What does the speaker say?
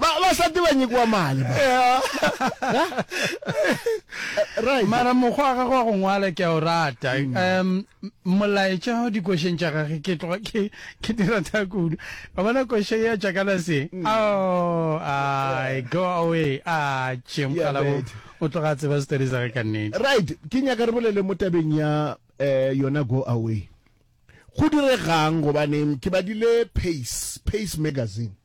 Ba ba sati ba nyekiwa mali ba. Right. Mara mokgwa ga go go ngwala ke o rata. Mm. Um molaetša o dikošeng tša gage ke tloga ke ke dira tha kudu. Ba bona koše ya tša kana se. Mm. Oh, I go away. Ah, tšhe mokgala o o tloga tseba story sa ka nnete. Right. Ke nyaka re bolele mo tabeng ya eh yona go away. Go diregang gobane ke badile Pace, Pace magazine.